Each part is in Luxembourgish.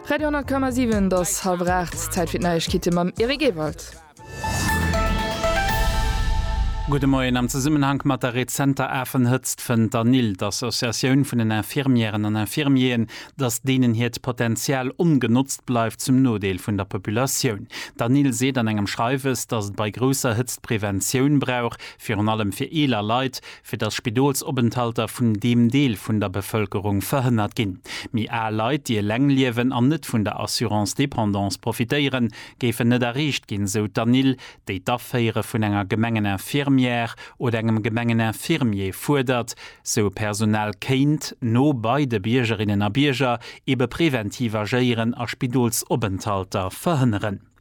Radio 10,7, et ass hallwer 8, Zäit fir d'Neiegkeete mam Eric Ewald. Gudde Moien. Am Zesummenhank mat der rezenter Afenhëtzt fënnt d'ANIL, d'Associatioun vun den Infirmièren an Infirmieren, datt deenen hiert Potenzial ongenotzt bleift, zum Nodeel vun der Populatioun. D'ANIL seet an engem Schreiwes, datt et bei grousser Hëtzt Preventioun brauch, virun allem fir eeler Leit, fir dass Spidolsopenthalter vun deem Deel vun der Bevëlkerung verhënnert ginn. Méi al Leit, déi eleng liewen an net vun der Assurance dépendance profitéieren, géifen net erreecht ginn, sou d'Anil, déi d'Aféiere vun enger Gemengeninfirmière oder engem Gemengeninfirmier fuerdert, sou e Personal kéint, no bei de Biergerinnen a Bierger, ebe preventiv agéieren a Spidolsopenthalter verhënneren.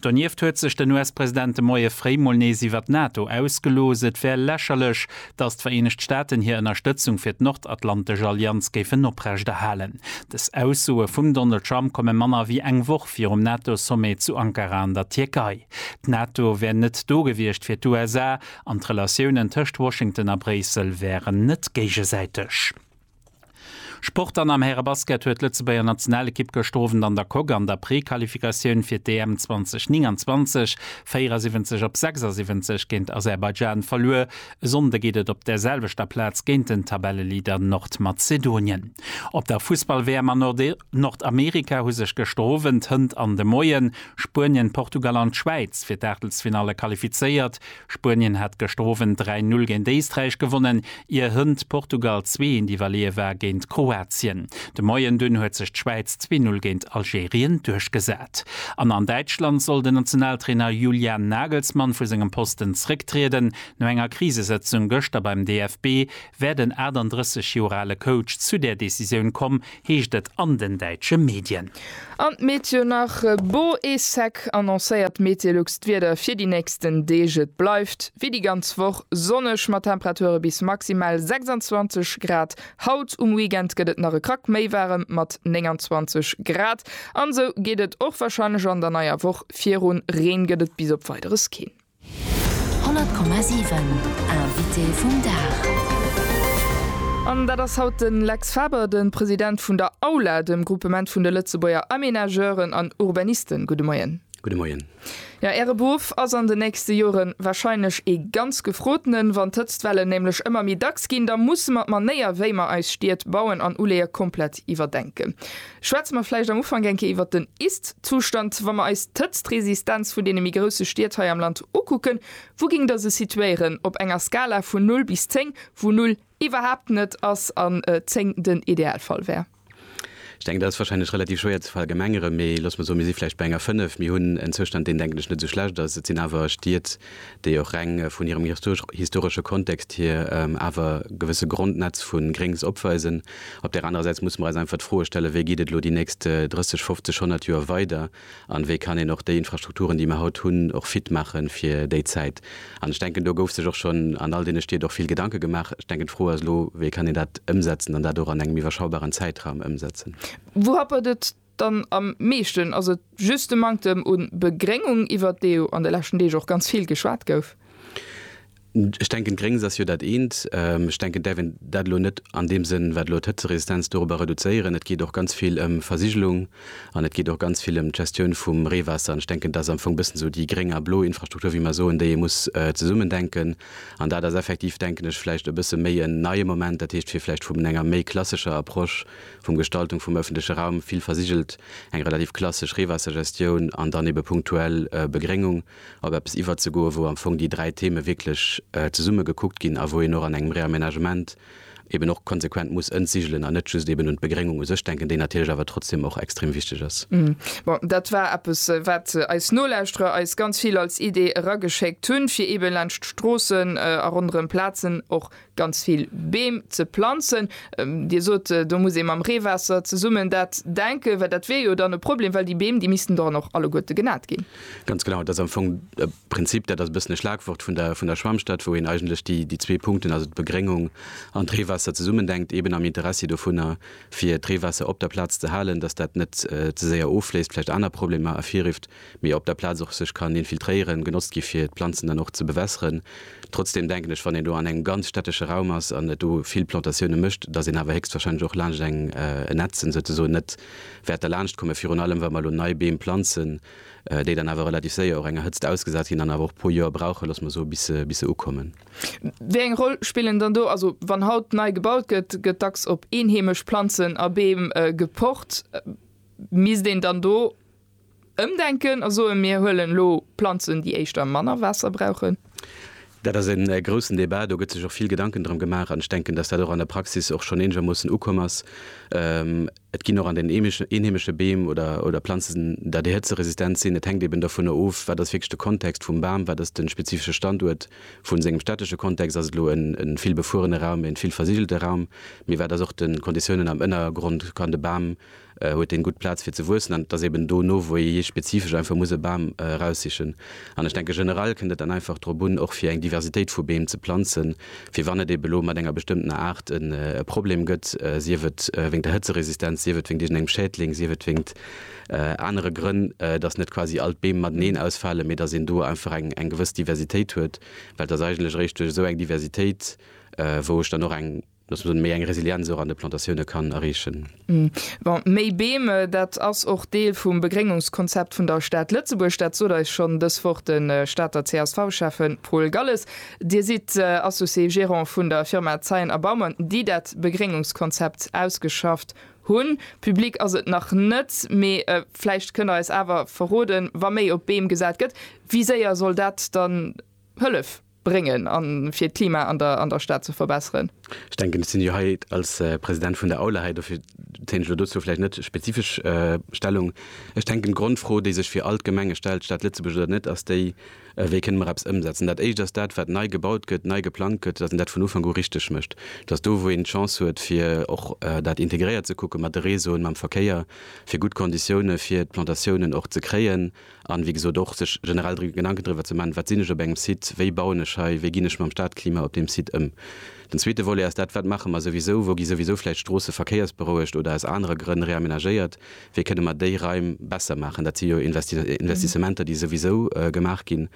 Donieft huet sech den US-President de Moie fréi mol nees iwwert d'NATO ausgelooss. Et wär lächerlech, datt d'Vereenegt Staaten hir Ënnerstëtzung fir d'Nordatlantesch Allianz géifen oprechterhalen. Dës Aussoe vum Donald Trump komme manner wéi eng Woch virum NATO-Sommet zu Ankara an der Tierkei. D'NATO wär net do gewiescht fir d'USA an d'Relatiounen tëscht Washington a Bréissel wären net géigesäiteg. Sport An am Härebasket huet d'Lëtzebuerger Nationalekipp gëschter Owend an der Coque an der Prequalifikatioun fir d'EM 2029 74 op 76 géint Aserbaidschan verluer. E Sonnde geet et op der selwechter Plaz géint den Tabelleleader Nordmazedonien. Op der Fussball-WM a Nordamerika hu sech gëschter Owend, hënt an de Moien, Spuenien, Portugal an d'Schwäiz fir d'Aachtelsfinalle qualifizéiert. Spuenien hat gëschter Owend 3, 0 géint Éisträich gewonnen, ier hënt Portugal zwee eent iwwerleeë war géint Kroatien. De Moien dunn huet sech d'Schwäiz zwee, 0 géint Algerien duerchgesat. An an Däitschland soll den Nationaltrainer Julian Nagelsmann vu sengem Posten zrécktrieden. No enger Krisesëtzung gëschter beim DFB wär den 38 Joer ale Coach zu där Decisioun komm, heescht et an den däitsche Medien. An d'Meteo nach, Beau et sec annoncéiert Metelux d'Wieder fir déi nächsten Deeg. Et bleift wéi déi ganz Woch sonneg mat Temperature bis maximal 26 Grad. Haut um Weekend gëtt et nach e Krack méi waarem mat 29 Grad. An esou geet et och warscheinlech an der neier Woch virun, Reen gëtt et bis op Weideres keen. 100,7 Invité vum Dag. An dat ass haut de Lex Faber, de President vun der AULA, dem Groupement vun de Lëtzebuerger Aménageuren an Urbanisten. Gudde Moien. Gudde Moien. Jo, Äre Beruff ass an den nächste Jore warscheinlech ee ganz gefrotenen. Wann d'Hëtztwellen nämlech ëmmer méi dacks ginn, da musse mer d'Manéier, wéi mer eis Stied bauen an uleeë, komplett iwwerdenken. Schwätze mer vläicht am Ufank eng Kéier iwwert den Ist-Zustand. Wa mer eis d'Hëtztresistenz vun deene méi grousse Stied hei am Land ukucken, wou géing Der se situéieren op enger Skala vun null bis zéng, wou null iwwerhaapt net ass an zéng den Idealfall wär? Ech denken, dat ass wahrscheinlech relativ schwéier ze verallgemengeren, mee loosse mer soen, mir si vläicht bei enger fënnef. Mir hunn en Zustand, deen, denken ech, net esou schlecht ass. Et sinn awer Stied, déi och reng vun hirem historesche Kontext hier awer gewësse Grondnetz vu Gréngs opweisen. Op där anerer Säit musse mer eis einfach d'Froe stellen, wéi geet et elo déi nächst 30, 50, 100 Joer weider an wéi kann een och déi Infrastrukturen, déi mer haut hunn, och fit maache fir déi Zäit. An ech denken, do gouf sech och schonn an all deene Stied och vill Gedanke gemaach. Ech denken, d'Fro ass elo, wéi kann een dat ëmsetzen an dat och an engem iwwerschaubaren Zäitraum ëmsetzen. Wou happert et Dann am meeschten ass et just de Manktem un Begréngung, iwwert dee jo an de leschten Deeg och ganz vill geschwat gouf. Ech denken Gréngs ass jo dat eent. Ech denken däerf een dat elo net an deem Sënn wat elo d'Hëtzeresistenz doropper reduzéieren. Et geet och ganz vill ëm Versigelung an et geet och ganz vill ëm d'Gestioun vum Reewaasser an ech denken dat ass am Fong e bëssen esou déi gréng a blo Infrastruktur wéi mer soen, déi ee muss zesummen denken an dat ass effektiv denken ech vläicht e bësse méi en neie Moment, dat heescht fir vläicht vum enger méi klassescher Approche, vum Gestaltung vum ëffentleche Raum, vill versigelt, eng relativ klassesch Reewaassergestioun an dann ebe punktuell Begréngung, op eppes iwwerzegoen, wou am Fong déi dräi Theme wierklech zesumme gekuckt ginn a wou een och an engem Réaménagement eben och konsequent muss entsigelen an net just eben un d'Begréngung u sech denken, déi natierlech awer trotzdeem och extrem wichteg ass. Bon, dat war eppes, wat eis Nolauschterer eis ganz vill als Idee erageschéckt hunn, fir eben laanscht d'Stroossen a ronderëm Plazen och ganz vill Beem ze planzen. Dir sot, do muss ee mam Reewaasser zesummen dat denken, well dat wier jo dann e Problem, well déi Beem, déi missten dann och alleguerte genat ginn. Ganz genau, et ass am Fong e Prinzip, dat ass e bëssen e Schlagwort vun der vun der Schwämmstad, wou een eigentlech déi déi zwee Punkten, also d'Begréngung an d'Reewaasser zesummen denkt, eben am Interessi dovunner, fir d'Reewaasser op der Plaz ze halen, datt dat net ze séier offléisst, vläicht aner Problemer ervirrifft. mee op der Plaz och sech kann infiltréieren, genotzt gi fir d'Planzen dann och ze bewässeren. Trotzdem denken ech, wann een do an engem ganz städtesche Raum ass an et do vill Plantatioune mécht, datt een awer héchstwahrscheinlech och laanscht eng en Ätzen souzesoen net wäert derlaanscht kommen, virun allem wa mer elo nei Beem planzen, déi dann awer relativ séier och enger Hëtzt ausgesat ginn an awer och e puer Joer brauchen, loosse mer soen, bis se bis se ukommen. Wéi eng Roll spillen dann do, also wann haut nei gebaut gëtt, gëtt dacks op eenheemesch Planzen a Beem gepocht, misst een dann do, Ëmdenken a soen, mir huelen elo Planzen, déi éischter manner Waasser brauchen. Dat ass e groussen Debat. Do gëtt sech och vill Gedanken drëm gemaach. An ech denken, dass dat och an der Praxis och schonn eenegermoossen ukomm ass. Et ginn och an den eenheemesche Beem oder Planzen, datt déi hëtzeresistent sinn. Et hänkt eben dovunner of, wat ass wierklech de Kontext vum Bam, wat ass de spezifesche Standuert vu sengem städtesche Kontext. Ass et elo e vill befuerene Raum, e vill versigelte Raum? Mee wat ass och de Konditiounen am Ënnergrond? Kann de Bam huet en gutt Plaz fir ze wuessen an et ass eben do no wou ee spezifesch einfach muss e Bam eraussichen an ech denke generell kënnt et dann einfach drop un och fir eng Diversitéit vu Beem ze planzen fir wann et ebe lo mat enger bestëmmtener Aart en e Problem gëtt, sief et wéngt der Hëtzeresistenz, sief et wéngt iergendengem Schädling, sief et wéngt anere Grënn, dass net quasi all d'Beem mateneen ausfalen, mee dass een do einfach eng eng gewëss Diversitéit huet, well et ass eigentlech eréischt duerch esou eng Diversitéit wou ech dann och eng. Dass een méi eng Resilienz och an de Plantatioune kann erreechen. Bon, méi Beem, dat ass och Deel vum Begréngungskonzept vun der Stad Lëtzebuerg. Dat sot eis schonn dës Woch de Stater CSV-Schäffe Paul Galles. Dir sidd Associé Gérant vun der Firma Zeyen a Baumann, déi dat Begréngungskonzept ausgeschafft hunn. Public ass et nach net, mee vläicht kënnt Der eis awer verroden, wa méi op Beem gesat gëtt, wéi séier soll dat dann hëllef? bréngen a fir d'Klima an der Stad ze verbesseren. Ech denken, ech sinn jo hei als President vun der Aula hei, dofir téint ech elo dozou vläicht net spezifesch Stellung. Ech denken, d'Grondfro, déi sech fir all d'Gemenge stellt, Stad Lëtzebuerg oder net, ass déi, Wéi kënne mer eppes ëmsetzen? Dat Éischt ass dat, wat nei gebaut gëtt, nei geplangt gëtt, dass een dat vun Ufank u richteg mécht, dass do, wou een d'Chance huet, fir och dat integréiert ze kucken, mat de Réseauen, mam Verkéier, fir gutt Konditioune fir d'Plantatiounen och ze kréien, An, wéi gesot, och sech generell dru Gedanken driwwer ze man, Wat sinn ech op engem Site? Wéi bauen ech hei? Wéi ginn ech mam Stadklima op deem Site ëm? Den zweete Volet ass dat, Wat maache mer souwisou? Wou gi souwisou vläicht Stroosse verkéiersberouegt oder aus anere Grënn reamenagéiert? Wéi kënne mer déi Raim besser maachen? Dat si jo Investissementer, déi souwisou gemaach ginn.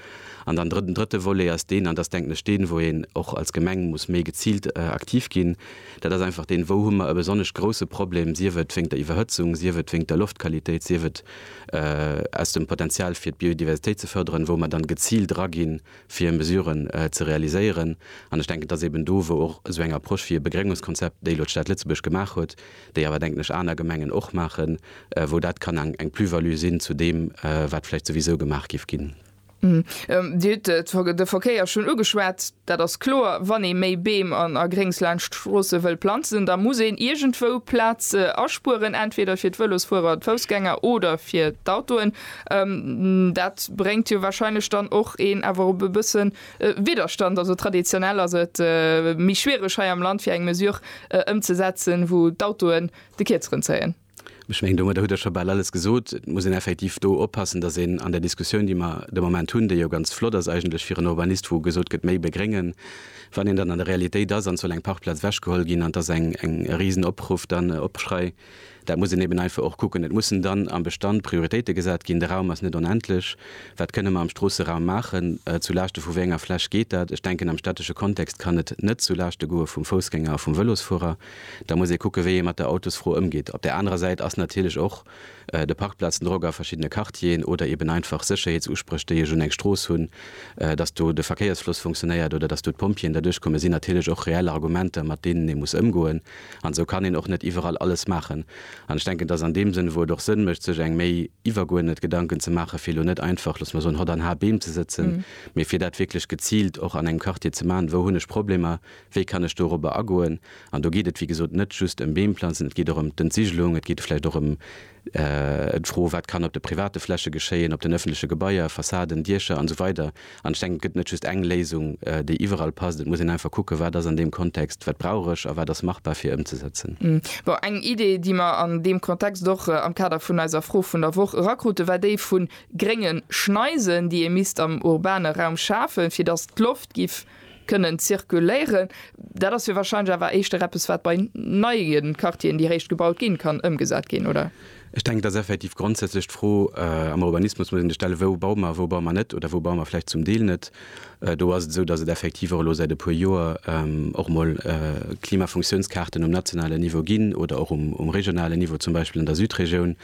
An dann den drëtte Volet ass deen, an dat ass denken ech deen, wou een och als Gemeng muss méi geziilt aktiv ginn, dat ass einfach deen, Wou hu mer e besonnesch grouse Problem, sief et wéingt der Iwwerhëtzung, sief et wéingt der Loftqualitéit, sief et, aus dem Potenzial fir d'Biodiversitéit ze fërderen, wou mer dann geziilt draginn, fir Mesuren ze realiséieren. An ech denken, et ass eben do, wou och esou eng Approche wéi e Begréngungskonzept, déi elo d'Stad Lëtzebuerg gemaach huet, déi awer denken ech aner Gemengen och maachen, wou dat kann eng Plus-value sinn zu deem, wat vläicht souwisou gemaach géif ginn. Dir hutt de Verkéier schonn ugeschwat. Dat ass kloer, wann ee méi Beem an a Gréngs laanscht d'Stroosse wëll planzen, da muss een iergendwou Plaz aspueren, entweder fir d'Vëlosfuerer, d'Foussgänger oder fir d'Autoen. Dat bréngt jo warscheinlech dann och een awer op e bësse Widderstand. Also traditionell ass et méi schwiereg hei am Land fir eng Mesure ëmzesetzen, wou d'Autoen de Kierzeren zéien. Ech mengen, domadder hutt Der scho bal alles gesot. Et muss een effektiv do oppassen, dass een an där Diskussioun, déi mer de Moment hunn, déi jo ganz flott ass eigentlech fir en Urbanist, wou gesot gëtt, méi begréngen, wann een dann an der Realitéit ass an soll eng Parkplaz ewechgeholl ginn an et ass eng Risenopruff dann, Opschrei, dat muss een eben einfach och kucken. Et mussen dann am Bestand Prioritéite gesat ginn. De Raum ass net onendlech. Wat kënne mer am Stroosseraum maachen? Zu Laaschte vu wéi enger Fläch geet dat? Ech denken, am städtesche Kontext kann et net zu Laaschte goe vum Foussgänger a vum Vëlosfuerer. Da muss ee kucken, wéi ee mat der Autosfro ëmgeet. Op där anerer Säit ass natierlech och de Parkplazendrock a verschiddene Quartieren oder eben einfach Sécherheetsuspréch, déi ech un eng Strooss hunn, dass do de Verkéiersfloss funktionéiert oder dass do d'Pompjeeën derduerch kommen, sinn natierlech och reell Argumenter, mat deenen ee muss ëmgoen. An esou kann een och net iwwerall alles maachen. An ech denken, dass an deem Sënn, wou et och Sënn mécht, sech eng méi iwwergeuerdnet Gedanken ze maachen, fir elo net einfach, loosse mer soen, hott an har Beem ze sëtzen, mee fir dat wierklech geziilt och an engem Quartier ze maachen, Wou hunn ech Problemer? Wéi kann ech dorobber agoen? An do geet et, wéi gesot, net just ëm Beem planzen, et geet och ëm d'Entsigelung, et geet vläicht och ëm d'Fro, wat kann op de private Fläche geschéien, op den ëffentleche Gebaier, Fassaden, Diecher an esou weider An ech denken, et gëtt net just eng Léisung, déi iwwerall passt. Et muss een einfach kucken, wat ass an deem Kontext, wat brauch ech a wat ass machbar fir ëmzesetzen. Bon, eng Idee, déi mer an deem Kontext och am Kader vun eiser Fro vun der Woch erakruten, war déi vu grénge Schneisen, déi ee misst am urbane Raum schafen, fir datt d'Loft giff Kënnen zirkuléieren. Dat ass jo wahrscheinlech awer éischter eppes, wat bei neie Quartieren, déi réischt gebaut ginn, kann ëmgesat ginn, oder? Ech denken, et ass effektiv grondsätzlech d'Fro, am Urbanismus muss een sech stellen, Wou baue mer, wou baue mer net oder wou baue mer vläicht zum Deel net? Do ass et esou, datt et effektiv och elo säit e puer Joer och emol Klimafunktiounskaarten um nationalen Niveau ginn oder och um regionalen Niveau, zum Beispill an der Südregioun.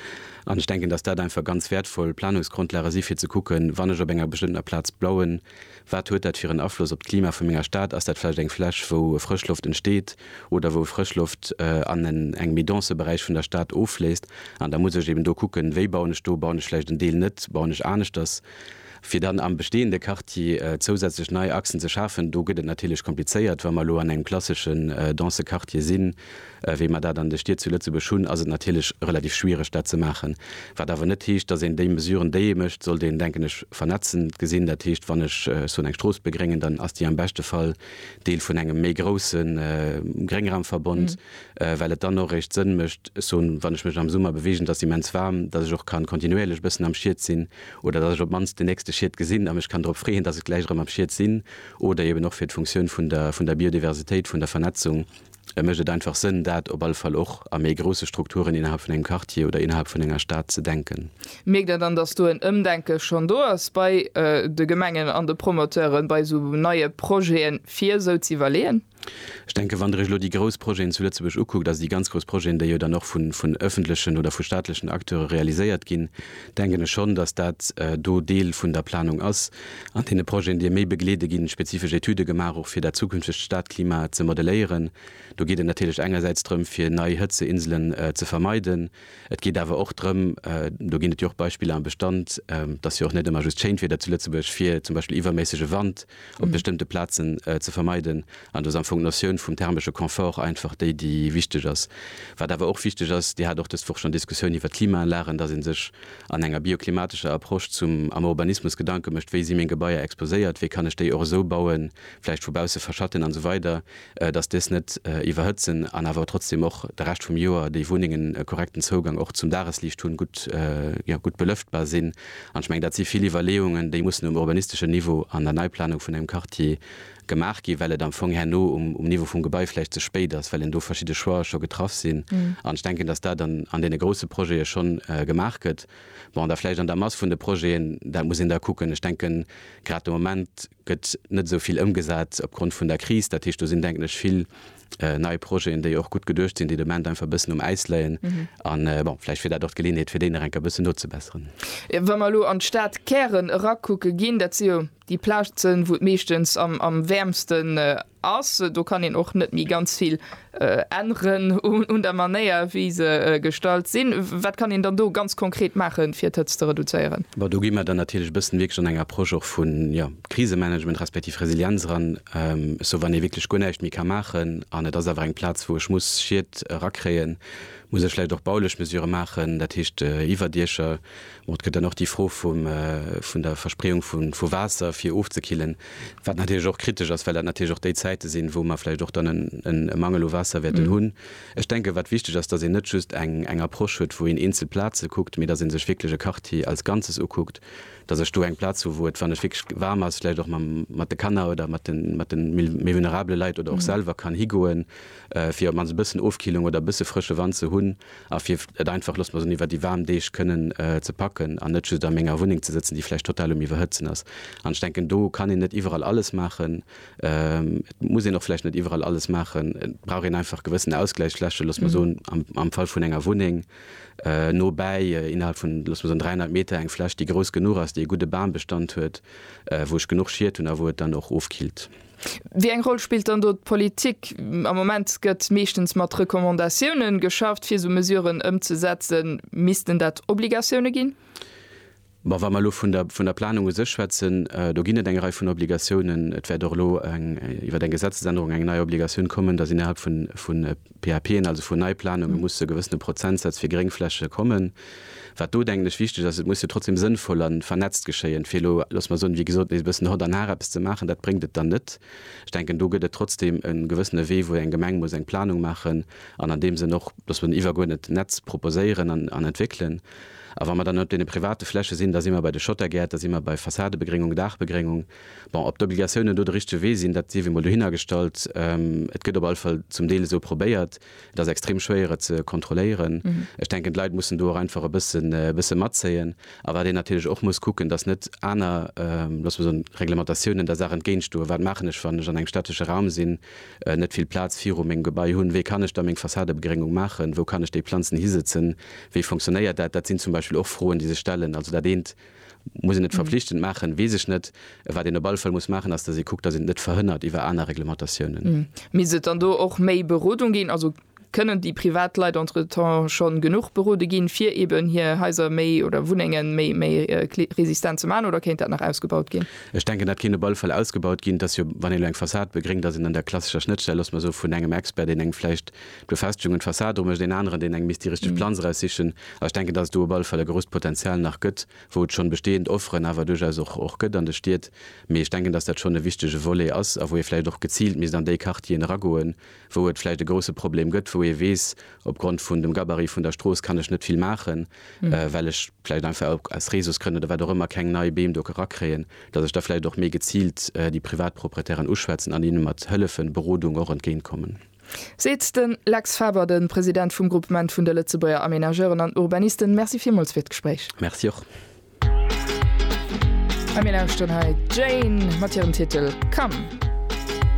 An ech denken, datt dat einfach ganz wäertvoll Planungsgrondlage si fir ze kucken, Wann ech op enger bestëmmtener Plaz bauen, Wat huet dat fir en Afloss op d'Klima vu menger Stad? Ass dat vläicht eng Fläch, wou Frëschloft entsteet oder wou Frëschloft an en engem méi dense Beräich vun der Stad offléisst? An da muss ech eben do kucken, wéi bauen ech do? Bauen ech vläicht en Deel net? Bauen ech aneschters? Fir dann am bestehende Quartier zousätzlech nei Achsen ze schafen, do gëtt et natierlech komplizéiert, wa mer elo an engem klassesche dense Quartier sinn, wéi mer dat an de Stied zu Lëtzebuerg hunn, ass et natierlech relativ schwiereg, dat ze maachen. Wat awer net heescht, datt een déi Mesuren, déi ee mécht, sollt een, denken ech, vernetzend gesinn. Dat heescht, wann ech soen, eng Strooss begréngen, dann ass déi am beschte Fall Deel vun engem méi grousse Gréngraumverbond, well et dann och eréischt Sënn mécht, ech soen, wann ech mech am Summer beweegen, et ass immens waarm, datt ech och ka kontinuéierlech e bëssen am Schied sinn oder datt ech op d'mannst den nächste Schied gesinn a mech kann drop freeën, datt ech gläich erëm am Schied sinn oder eeben och fir d'Funktioun vun der Biodiversitéit, vun der Vernetzung. Da mécht et einfach Sënn, dat op alle Fall och a méi grousse Strukturen innerhalb vun engem Quartier oder innerhalb vun enger Stad ze denken. Mierkt Der dann, dass do en Ëmdenke schonn do ass bei de Gemengen an de Promoteuren, bei esou neie Projete fir esou ze iwwerleeën? Ech denken, wann Der Iech elo déi grouss Projeten zu Lëtzebuerg ukuckt, also déi ganz grouss Projeten, déi jo dann och vun ëffentlechen oder vu staatlechen Acteure realiséiert ginn, denken ech schonn, dass dat do Deel vun der Planung ass, an deene Projeten, déi e méi begleede ginn, spezifesch Etüde gemaach, och fir dat zukünftegt Stadklima ze modelléieren. Do geet et natierlech engersäits drëm, fir nei Hëtzeinselen ze vermeiden. Et geet awer och drëm, do ginn et jo och Beispiller am Bestand, et ass jo och net ëmmer just schéint Wieder zu Lëtzebuerg, fir zum Beispill iwwerméissege Wand, op bestëmmte Plazen ze vermeiden. An do ass am Fong d'Notioun vum thermesche Confort einfach déi, déi wichteg ass. Wat awer och wichteg ass, Dir hat och dës Woch schonn Diskussioun iwwert d'Klimaanlagen, dass ee sech an enger bioklimatescher Approche zum, am Urbanismus Gedanke mécht, wéi si meng Gebaier exposéiert, wéi kann ech déi och esou bauen, vläicht vu bausse verschatten an esou weider, dass dës net iwwerhëtzen an awer trotzdeem och de Rescht vum Joer déi Wunnengen e korrekten Zougang och zum Dagesliicht hunn, gutt, jo, gutt belëftbar sinn. An ech mengen, dat si vill Iwwerleeungen, déi mussen um urbanisteschen Niveau an der Neiplanung vun engem Quartier gemaach ginn, well et am Fong herno um Niveau vum Gebai vläicht ze spéit ass, well een do verschidde Choixë scho getraff sinn. An ech denken, datt dat an deene grousse Projete schonn gemaach gëtt. Bon, da vläicht an der Mass vun de Projeten, dat muss een da kucken. Ech denken, grad de Moment, gëtt net esou vill ëmgesat opgrond vun der Kris. Dat heescht, do sinn, denken ech, vill nei Projeten, déi och gutt geduecht sinn, déi de Moment einfach e bëssen um Äis léien. A bon, vläicht wier dat och d'Geleeënheet, fir déi nach eng Kéier e bëssen nozebesseren. Wa mer elo an d'Stadkären erakucke ginn, dat si jo déi Plazen, wou et meeschtens am wäermsten Ass. Do kann een och net méi ganz vill änneren un der Manéier, wéi se gestallt sinn. Wat kann een dann do ganz konkret maachen, fir d'Hëtzt ze reduzéieren? Bon, do gi mer dann natierlech e bëssen wierklech an eng Approche och vu, jo, Krisemanagement respektiv Resilienz eran. Sou wann ee wierklech guer näischt méi ka maachen an et ass awer eng Plaz, wou ech muss Schied erakréien, muss ech vläicht och baulich Mesurë maachen, dat heescht Iwwerdiecher, Bon, et gëtt dann och déi Fro vum, vun der Verspreeung vu, vu Waasser, fir ofzekillen, wat natierlech och kritesch ass, well dat natierlech och déi Zäite sinn, wou mer vläicht och dann en, en, e Mangel u Waasser wäerten hunn. Ech denken, wat wichteg ass, dass een net just eng, eng Approche huet, wou een eenzel Plaze kuckt, mee dass ee sech wierklech e Quartier als Ganzes ukuckt, dass ech do eng Plaz hu wou et, wann et wierklech waarm ass, vläicht och mam, mat de Kanner oder mat den, mat den méi, méi vulnerabele Leit oder och selwer kann higoen, fir op d'mannst e bëssen Ofkillung oder e bësse frësche Wand ze hunn, a fir et einfach, loosse mer soen, iwwer déi waarm Deeg kënnen ze packen an net just a menger Wunneng ze sëtzen, déi vläicht total um Iwwerhëtzen ass. An ech denken, do kann een net iwwerall alles maachen. Et muss een och vläicht net iwwerall alles maachen. Et brauch een einfach gewëssen Ausgläichsflächen, loosse mer soen, am Fall vun enger Wunneng nobäi, innerhalb vun, loosse mer soen, 300 Meter, eng Fläch, déi grouss genuch ass, déi e gudde Bambestand huet, wou ech genuch Schied hunn a wou et dann och ofkillt. Wéi eng Roll spillt dann do d'Politik? Am Moment gëtt meeschtens mat Recommandatioune geschafft, fir esou Mesuren ëmzesetzen. Missten dat Obligatioune ginn? Bon, wa mer elo vun der, vun der Planung u sech schwätzen, do ginn et eng Rei vun Obligatiounen. Et wäert och elo eng, iwwer eng Gesetzesännerung eng nei Obligatioun kommen, dass innerhalb vun, vun, PAPen, also vun Neiplanunge musse gewëssene Prozentsaz fir Gréngfläche kommen. Wat do, denken ech, wichteg ass, et muss jo trotzdeem sënnvoll a vernetzt geschéien, fir elo, loosse mer soen, wéi gesot, nees e bëssen hott an har eppes ze maachen, dat bréngt et dann net. Ech denken, do gëtt et trotzdeem e gewëssene Wee, wou eng Gemeng muss eng Planung maachen an an deem Sënn och, loosse mer soen, iwwergeuerdnet Netz proposéieren an entwéckelen. A wa mer dann op deene private Fläche sinn, da si mer bei de Schottergäert, da si mer bei Fassadebegréngung, Daachbegréngung. Bon, ob d'Obligatiounen do de richtege Wee sinn, dat sief emol dohinnergestallt. Et gëtt op alle Fall zum Deel esou probéiert. Et ass extrem schwéier, et ze kontrolléieren. Ech denken, d'Leit mussen do och einfach e bësse matzéien. A wat een natierlech och muss kucken, dass net aner, loosse mer soen, Reglementatiounen der Saach entgéintstoen, Wat maachen ech, wann ech an engem städtesche Raum sinn, net vill Plaz viru mengem Gebai hunn? Wéi kann ech da meng Fassadebegrëngung maachen? Wou kann ech déi Planzen hisëtzen? Wéi funktionéiert dat? Dat sinn zum Beispill och Froen, déi sech stellen. Also dat eent. Muss een et verpflichtend maachen? Weess ech net. Wat een op alle Fall muss maachen, ass, datt ee kuckt, datt een et net verhënnert iwwer aner Reglementatiounen. Misst et dann do och méi Berodung ginn? Also kënnen déi privat Leit entretemps scho genuch berode ginn, fir eeben hir Haiser méi oder Wunnenge méi, méi resistent ze maachen oder kéint dat nach ausgebaut ginn? Ech denken, dat kéint op alle Fall ausgebaut ginn. Et ass jo, wann ee elo eng Fassad begréngt, ass een an der klassescher Schnëttstell, loosse mer soen, vun engem Expert, deen engem vläicht D'Befestigung un d'Fassad, do mécht een aneren, deen eng misst déi richteg Planz eraussichen. A ech denken, dass et do op alle Fall e grousst Potenzial nach gëtt, wou et schonn bestehend Offeren awer duerchaus och och gëtt an de Stied. Mee ech denken, dass dat schonn e wichtege Volet ass a wou ee vläicht och geziilt misst an déi Quartieren eragoen, wou et vläicht e grousse Problem gëtt, wou ee weess, opgrond vun dem Gabarit vun der Strooss kann ech net vill maachen, well ech vläicht einfach och aus Reseausgrënn oder wat och ëmmer keng nei Beem do erakréien, dass ech da vläicht och méi geziilt déi Privatproprietären uschwätzen an hinne mat hëllefen, Berodung och entgéintkommen. Seet den Lex Faber, den President vum Groupement vun de Lëtzebuerger Aménageuren an Urbanisten. Merci villmools fir d'Gespréich. Merci och. A mir lauschteren hei d'Jane mat hirem Titel Come.